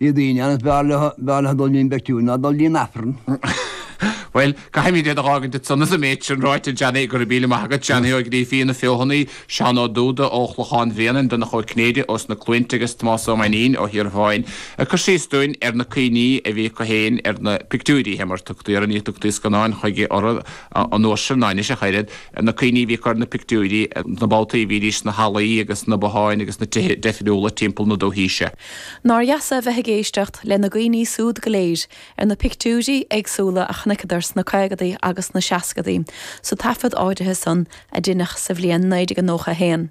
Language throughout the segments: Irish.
Bhí daoine ann is b'fhearr leo, b'fhearr leofa dul dtí'n bpeictiúir ná dul dtí'n Aifreann. Bhuel, caithfimid iad a dh'fhágaint ansan agus an méid sin ráite, Johnny, go raibh míle maith agat, Johnny Ó Grífín ón bhFeothanaigh, Seán Ó Dúda ó Chlochán Bhréanainn, Donncha Ó Cinnéide ós na Cluainte agus Tomás Ó Mainnín ó Thíorabháin ag cur síos dúinn ar na cuimhní a bhí acu fhéin ar na pictiúirí, shea, mar tugtaí orthu, ní tugtaí scannáin chuige orthu an uair sin, ná anois ach oiread, ar na cuimhní a bhí acu ar na pictiúirí, na babhtaí a bhídís sna hallaí agus sna botháin agus sna tithe deifriúla timpeall na dúthaí seo. Nár dheas é a bheith ag éisteacht lena gcuimhní súd go léir ar na pictiúirí éagsúla a chonaiceadar sna caogadaí agus sna seascadaí sa taifead áirithe san a deineadh sa bhliain 1991.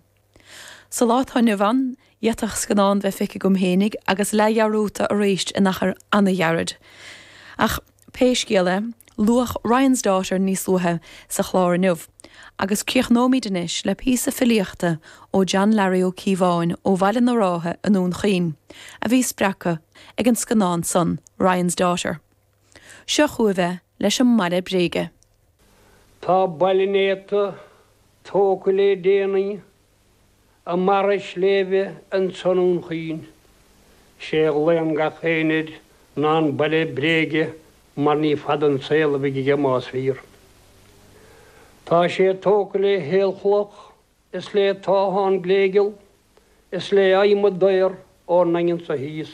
Sa lá atá inniu ann, d'fhéadfadh scannán bheith feicthe agam fhéinig agus leath-dhearúdta aríst in achar ana-ghairid. Ach. Pé scéal é, luadh Ryan's Daughter níos luaithe sa chlár inniu, agus críochnóimid anois le píosa filíochta ó John Larry Ó Cíobháin ó Bhaile na Rátha i nDún Chaoin, a bhí spreagtha ag an scannán san, Ryan's Daughter. Seo chugaibh é, leis an mBaile Bréige. Tá baile néata tógtha lé déanaí i mbarra sléibhe anso i nDún Chaoin. 'Sé a ghlaonn gach éinne air ná an Baile Bréige mar ní fada an saol a bheidh aige más fíor. Tá sé tógtha le haolchloch is le táthán gléigeal is le adhmad daor ón nDaingean so thíos.